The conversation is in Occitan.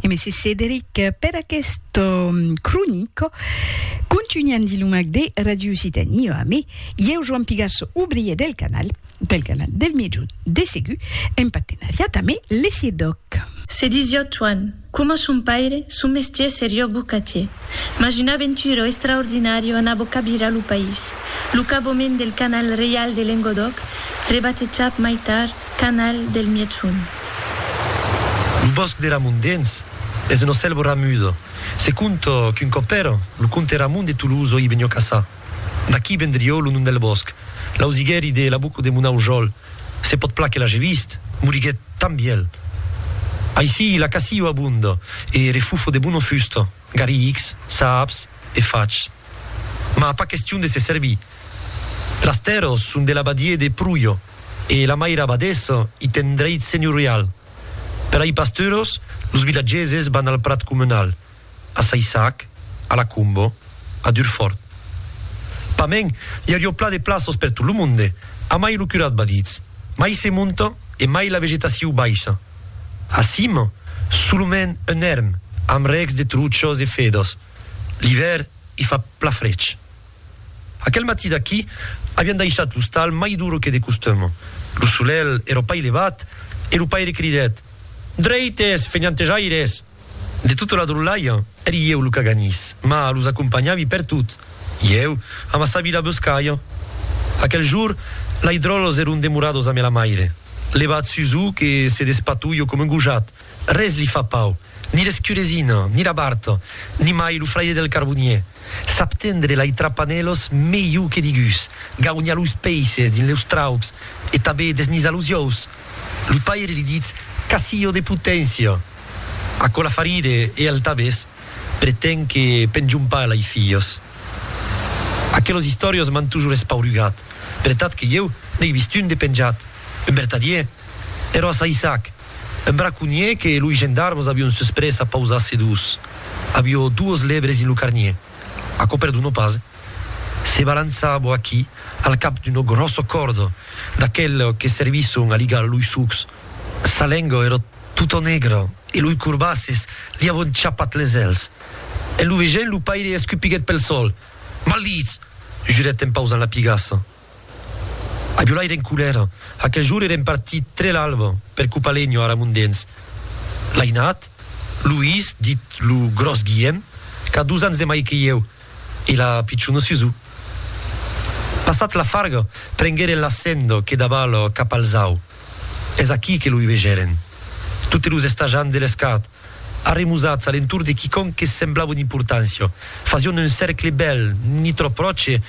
E mèsi Cederic per aquest cronico. Contunhan dilumac de Radio Occitanie a me, ieu Joan Pigasso, obrier del canal, del canal del Miègjorn de Segur, en partenariat amé le CIRDOC. Se disiot Joan, coma son paire, son mestier serió bocatier. Mas un aventuro extraordinario anabo cabirar lo país, lo caboment del canal reial de Lengodòc, rebatejat mai tard Canal del Mièchon. Lo bòsc de Ramon Dens es un ocelbo ramudo. Se conta qu'un còp èra lo comte Ramon de Tolosa o i venió caçar. D'aquí vendrió lo nom del bòsc. L'ausiguèri de l'abuco de mon aujòl, se pòt plan que l'age vist, moriguèt tan vièlh. Aicí la caçio abonda e refufo de bona fusta, garrics, saps e fachs. Mas pas question de se servir. Las tèrras son de l'abadier de Pruyo. E la maira abadessa i ten dreit senhorial. Per ai pasturos, los vilatgeses van al prat comunal, a Saissac, a la Combo, a Durfort. Pamèn, i aurió pla de plaços per tot lo monde, a mai lo curat va ditz, mai se monta e mai la vegetaciu baisha. A cima, solomèn un èrm amb rècs de truchas e fedas. L'ivèrn i fa pla frech. Aquel matí d'aquí avián daishat l'ostal mai duro que de costum. Lo solelh èra pas levat e lo paire cridèt, Drèites, fenhantejaires! De tota la drolhalha, èri ieu lo caganís, mas los acompanhavi pertot. Ieu amassavi la boscalha. Aquel jour, lei dròlhs èron demorados amé la maire. Levat sus o que se despatolho coma un gojat, Res li fa pau, ni l'escuresina, ni la barta, ni mai lo fraire del carbonier. Sap tendre lai trapanèlos melhor que digús, gaunha los peisses dins leus traucs e tabé desnizar los iòus. Lo paire li ditz casillo de poténcia. Aquò la fa rire e el tabés pretén que penjon pas lai filhos. Aquelos istòrios m'an tojor espaurugat, per etat que ieu n'ai vist un de penjat, un vertadier, ero a Saissac. Un braconhier que loi gendarmes avion susprés a pausar sedós. Avió duos lebres in lo carnier. Aquò perdonó pas. Se balançar bo aquí al cap d'una gròssa còrda d'aqueles que servisson a ligar loi sucs. Sa lenga èra tota negra e loi corbasses li avon chapat les èls. En lo vegent lo paire escupiguèt pel sòl. Maldits! jurèt en pausant la pigassa. Agiolai era en colèra. Aquel jorn eren partit tre l'alba per Copalenho, ara Mondens. L'ainat, Luís, dit lo gròs Guièm, qu'a dos ans de mai que ieu, e la pichona Susù. Passat la farga, prengueren la senda que daval cap al zau. Es aquí que lo hubegèren. Totes los estajants de l'escart, arremusats a l'entorn de quicòm que semblava d'importància, fasián un cèrcle bèl, ni tròp pròche,